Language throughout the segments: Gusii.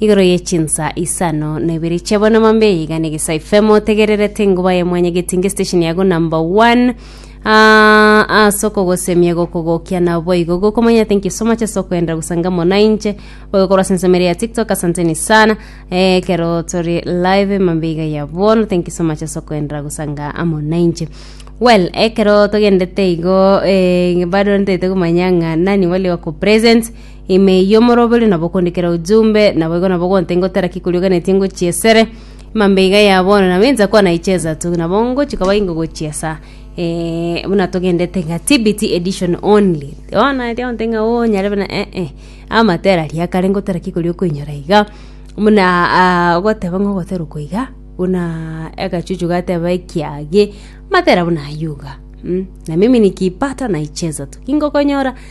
Igoro ye chinsa isano na ibere chia bono mambe iga ne gesa FM otegererete nguba ya mwanya getinge station yago number one Ah, ase okogosemia gokogokia na boigo gokomanya thank you so much ase okwenda gusanga mona inche boigo korwa ase ensemere ya tiktok asanteni sana eh, kero tori live mambe iga ya bono thank you so much ase okwenda gusanga mona inche well ekero togendete igo eh, bado ntete kumanya ng'a nani wale wako present Ime y'omorobori nabo okondikera ujumbe, naboigo nabo ogonte ngotera ki korioganetie ngochia esere. Mambe iga ya bono nabo insa kwana icheza tu, nabo ngochi kaba ingo gochiesa. Eh, buna togendete nga TBT edition only. Ona eria onte nga oo nyare buna eh eh. Amatera ria kare ngotera ki korio koinyora iga. Buna ah, ogoteba nga ogotera okoiga, buna agachuchu gateba ekiage, matera buna ayuga. Mm, na mimi nikipata naicheza tu. Ingokonyora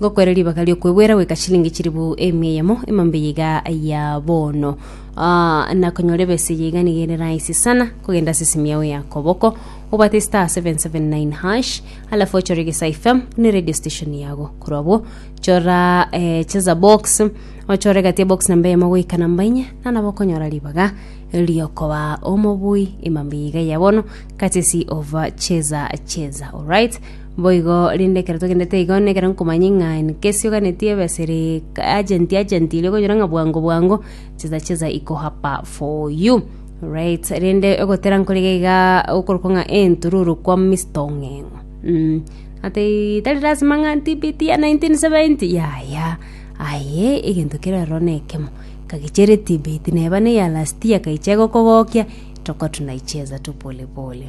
Ngokwere ribaga ri'okwegwera goika chilingi chilifu emia eyemo emambe yiga ya bono. Ah, nakonyora ebese eye iga niga ere rahisi sana kogenda ase esimu yao ya koboko obwate star 779 hash alafu ochore gesai fm ne radio station yago korwa abwo chora eh, cheza box ochore gati ya box namba eyemo goika namba inye nanabo okonyora ribaga riokoba omobui emambe yiga ya bono katesi ova cheza cheza alright Boigo rinde ekero togendete igo, na ekero nkomanya ng'a nkesiuganeti ebeseri agent agent eria okonyora ng'a bwango bwango cheza cheza iko hapa for you right rinde ogotera nkorige iga okorokwa ng'a entururu kwa Mister Ong'eng'o mm. Ati tari lazima ng'a ntibiti ya 1970 yaya aye egento kere ororo na ekemo kagichera etibiti neba ne ya last year kaichia gokogokia toka tunaicheza tu pole pole